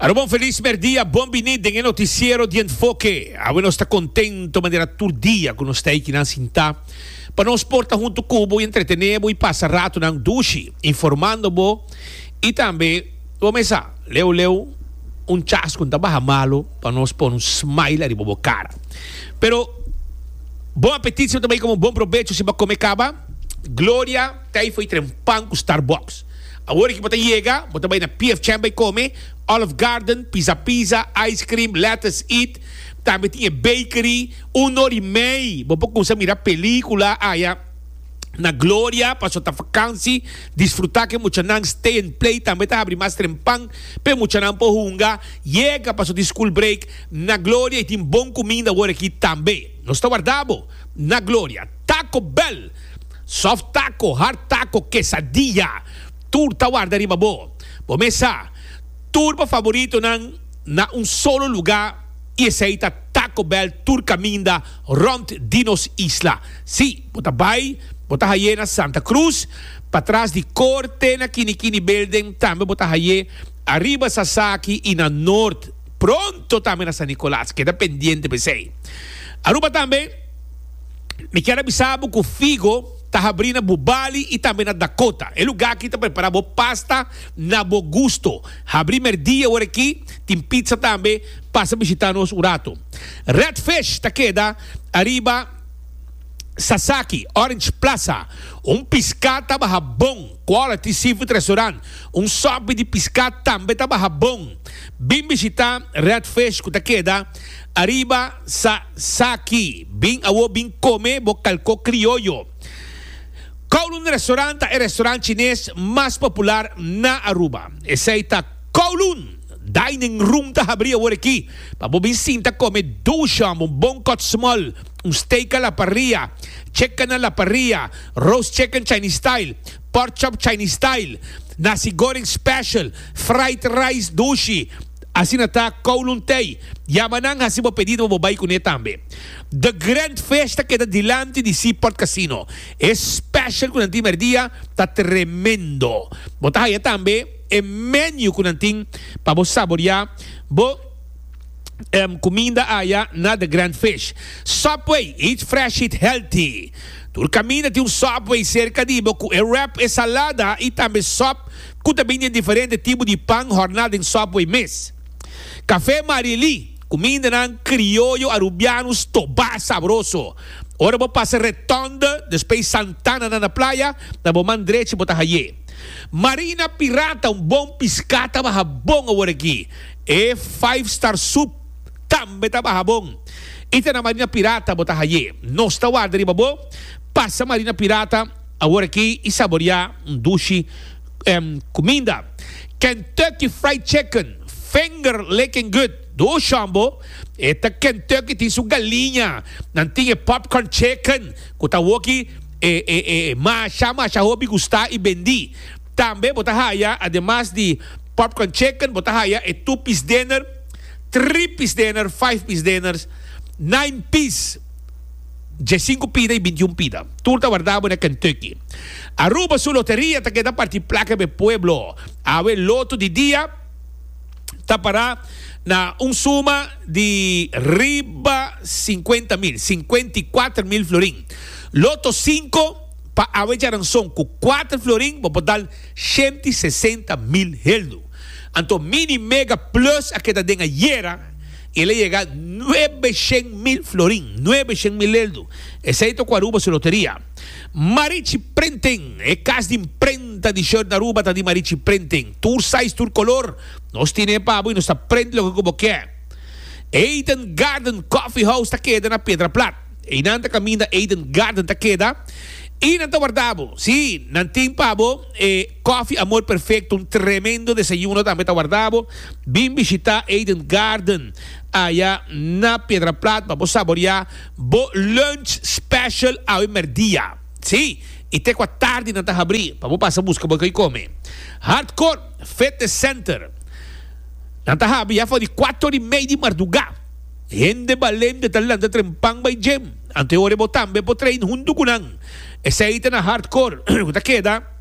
Aroba un feliz merdia, bon bini den e noticiero di Enfoque. Awe nos ta contento manera tur dia cu nos ta aki nan sinta pa nos por ta hunto cu bo y entretene bo y pasa ratonan dushi informando bo y tambe bo mesa leu leu un chascon ta baha malo pa nos pone un smile ariba bo cara. Pero bon apetit siempre ta bay como bon provecho siba come caba. Gloria ta y fo'i trae un pan cu Starbucks. Awor ki bo ta yega, bo ta bai na PF Chang bai kome, Olive Garden, Pizza Pizza, Ice Cream, Lettuce Eat. Tambe tin e bakery. Un or i mei bo por kumsa mira pelikula aya na Gloria. Paso ta vakansi, disfruta ku e muchanan. Stay and Play tambe ta habri mas trempan pa e muchanan por hunga. Yega paso di school break na Gloria i tin bon kuminda awor aki tambe. Nos ta warda bo na Gloria. Taco Bell. Soft taco, hard taco, quesadilla, tur ta warda riba bo. Bo mesa tur bo favoritonan na un solo lugá i esei ta Taco Bell tur kaminda rònt di nos isla. Sí, bo ta bai, bo ta haié na Santa Cruz, patras di Corte na Kinikini Building, tambe bo ta haié ariba Sasaki i na Noord, pronto tambe na San Nicolaas. Keda pendiente p'esei. Aruba tambe. Mi kier a bisa bo ku figo ta habrí na bo bali i tambe na Dakota. E lugá akí ta prepará bo pasta na bo gusto. Habrí mèrdia ora akí, tin pizza tambe. Pasa bishitá nos un ratu. Red Fish ta keda ariba Sasaki, Orange Plaza. Un piská ta baha bon. Quality Seafood Restaurant, un sòpi di piská tambe ta baha bon. Bin bishitá Red Fish ku ta keda. Ariba sa saki bin awo bin come bo calco crioyo. Kowloon Restaurant ta e restaurant chines mas popular na Aruba. Esey ta Kowloon Dining Room ta habri awor aki pa bo bin sinta come duo sham, un bon cut small, un steak a la parrilla, chicken a la parrilla, roast chicken Chinese style, pork chop Chinese style, nasi goreng special, fried rice dushi. Asina ta Kowloon Tay. Yama nan hasi bo pedido pa bo bai kuné tambe. The Grand Fish ta keda dilanti di Seaport Casino. E special ku nan tin mèrdia ta tremendo. Bo ta haya tambe e menu ku nan tin pa bo saboriá bo kuminda aya na The Grand Fish. Subway, eat fresh, eat healthy. Tur kaminda tin un Subway serka di bo ku e wrap, e salada i tambe sòp. Cu ta bini e diferente tipo di pan horna den Subway mes. Café Marieli, cumindanan crioyo Arubiano stobá sabroso. Ora bo pasa Retonde, despues Santana na na playa, na bo man drechi bo ta haye. Marina Pirata, un bon piscá ta baha bon awor aki. E Five Star Soup tambe ta baha bon. Y ta na Marina Pirata bo ta haye. Nos ta warda riba bo. Pasa Marina Pirata. Awor aki i saborea un dushi cuminda, Kentucky Fried Chicken, finger licking good. Door Shambo, E ta Kentucky tin su galiña, nan tin e popcorn chicken cu ta awor aki e masha masha hopi gusta i bendi. Tambe bo ta haya ademas di popcorn chicken bo ta haya e two piece dinner, three piece dinner, five piece dinners, nine piece. Djasinku pida i bintiun pida. Tur ta warda bo na Kentucky. Aruba su loteria ta keda parti plaka pa e pueblo. Awe loto di dia ta para na un suma di riba sinkuenta mil, sinkuenta i kuater mil florin. Loto sinku pa awe djaranson ku kuater florin bo por dal shenta i sesenta mil heldu. Anto Mini Mega Plus a keda den ayera. El a yega nuebe shen mil florin, nuebe shen mil leldu. Esei ta ku Aruba su loteria. Marichi Printing, E kas di mprenta di shirt na Aruba ta di Marichi Printing. Tur size, tur kolor, nos tine e pa bo i nos ta print loke ku bo ke. Eden Garden Coffee House ta keda na Pedra Plat. Einan ta kaminda Eden Garden ta keda i nan ta warda bo. Sí, nan tin pa bo e. Coffee Amor Perfecto, un tremendo desayuno tambe ta warda bo. Bin bishita Eden Garden aya na Piedraplat pa bo saborea bo lunch special awe merdia. Sí, y te cua tardi nan ta habri pa bo pasa busca bo cay come. Hardcore Fitness Center, nan ta habi ya for di cuato ora y mey di marduga. Hende balente ta lanta trempan bay gym, anto e ora bo tambe por train hunto cu nan. Esey ta na Hardcore cu ta keda.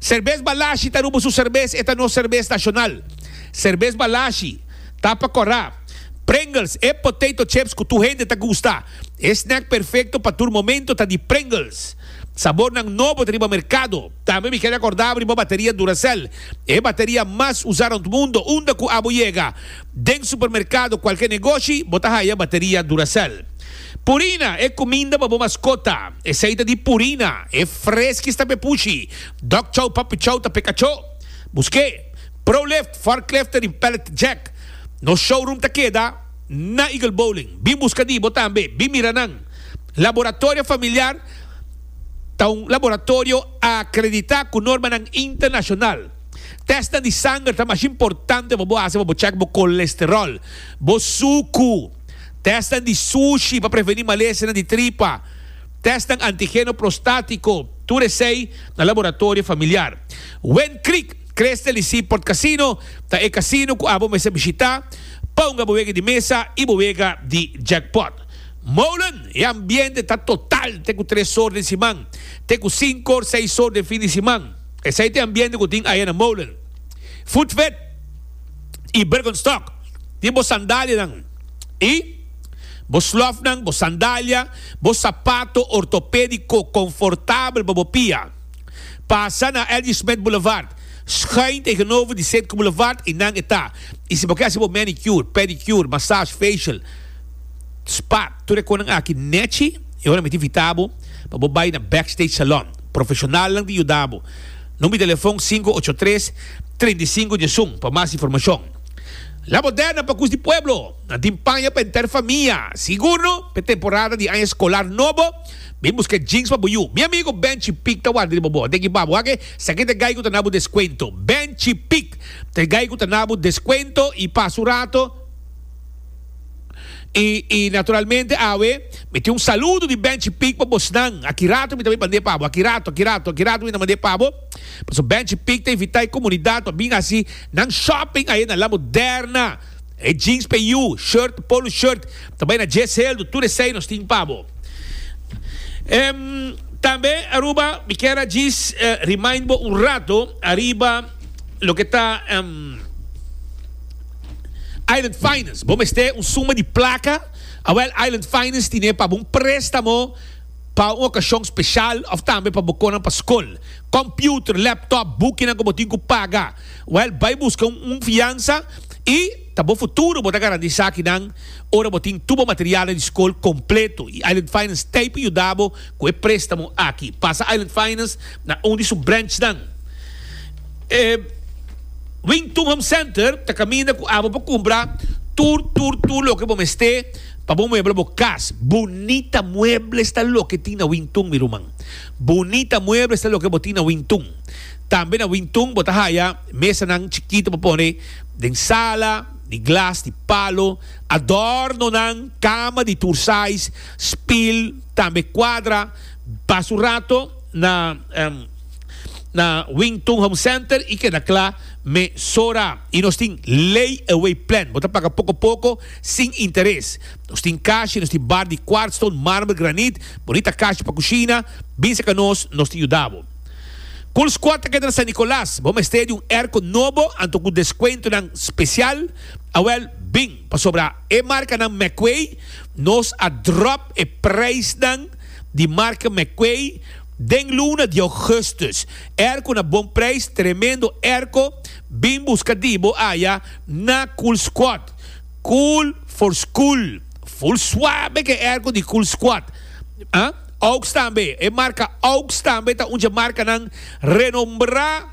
Serbes Balashi ta rubo su serbes, e ta nos serbes nashonal. Serbes Balashi, tapa kòrá, Pringles, e potato chips ku tur hende ta gusta. E snack perfekto pa tur momento ta di Pringles. Sabornan nobo ta riba merkado. Tambe mi kere akordá riba bateria Duracell, e bateria mas usá rònt mundo, unda ku abo yega. Den supermerkado kualke negoshi bo ta haya bateria Duracell. Purina, e kuminda pa bo maskota, esei ta di Purina, e Friskies ta pepushi, Dog Chow Puppy Chow ta pekacho. Buske, Prolift, Forklift tarin Pallet Jack. Nos showroom ta keda na Eagle Bowling. Bin buska di bo tambe, bin mira nan. Laboratorio Familiar ta un laboratorio akredita ku normanan internashonal. Testa di sanger ta mas importante pa bo hasi pa bo check bo kolesterol, bo suku. Testa di sushi pa preveni malesenan di tripa. Testa antigeno prostatiko. Tur esei na laboratorio familiar. Win Creek Crystal y Seaport Casino ta e casino cu abo mester bishita. Ponga bo wega di mesa y bo wega di jackpot. Molen, E ambiente ta total te cu tres or den siman, te cu cinco or seis or den fin di siman. Esei ta e ambiente ku tin aya na Molen. Voetvet i Bergenstock tin bo sandalianan i bo slofnan, bo sandalia, bo sapato ortopediko konfortabel pa bo pia. Pasa na L. G. Smith Boulevard, schuin tegenover di Sitco Boulevard i nan e ta. I si bo ke hasi bo manicure, pedicure, massage, facial, spa tur e konan aki nechi e ora mi ta invita bo pa bo bai na Backstage Salon. Profeshonalnan di yuda bo. Num di telefon sinku ocho tres, treinta i sinku dies un pa mas informashon. La bo dena pa Kus di Pueblo! Nan tin paña pa henter famia. Sigurno, p'e temporada di aña skolar nobo, bin buska e jeans pa bo yu. Mi amigo Benchi Pic ta warda di bo bo. Deki pa bo aki, sa ki ta gai ku ta na bo deskuento. Benchi Pic ta gai ku ta na bo deskuento i pasa un rato. Y y naturalmente awe mi tin un saludo di Benchi Pig pa bosnan. Aki rato mi ta bay mand'e pabo. Aki rato, aki rato, aki rato mi ta mand'e pabo. Paso Benchi Pig ta invita e comunidad pa bin haci nan shopping aye na La Moderna. E jeans PU, shirt, polo shirt ta bay na Dje Seldon. Tur esey nos tin pabo. Em, tambe Aruba mi kier a djis eh, remind bo un rato ariba loke ta em. Island Finance. Bo mester un suma di plaka? Awèl, Island Finance tine pa bo un préstamo pa un okashon speshal òf tambe pa bo konan pa skol. Kòmpiuter, lèptòp, bukinan ku bo tin ku paga. Wèl, bai buska un fiansa i ta bo futuro bo ta garantí esakinan ora bo tin tur bo materialnan di skol kompleto. I Island Finance t'ei pa yuda bo ku e préstamo aki. Pasa Island Finance na un di su brènchnan. E Wing Tun Home Center ta caminda cu abo pa cumpra tur, tur, tur loke bo mester pa bo muebla bo cas. Bunita muebles ta loke tin na Wing Tun, mi ruman. Bunita muebles ta loke bo tin na Wing Tun. Tambe na Wing Tun bo ta haya mesanan chikito pa pone den sala, di glas, di palo, adornonan, cama di tur size, spil, tambe cuadra. Pasa un rato na. na Wing Tun Home Center y keda kla mesora. Y nos tin lay away plan, bo ta paga poco poco sin interes. Nos tin cash y nos tin bar di quartz stone, marmer, granit, bonita cash pa cushina, binse ca nos, nos tin yuda bo. Cool Squad ta keda na San Nicolas, bo mester di un airco nobo anto cu descuentonan special? Awel, bin, pasobra e marcanan McQuay nos a drop e prijsnan di marca McQuay, Den luna di Augustus, erko na bon prijs, tremendo erko, bin buska di bo aya na Cool Squad. Cool for school. Full suabe ke erko di Cool Squad. Aux tambe, e marka Aux tambe ta un dje markanan renombrá.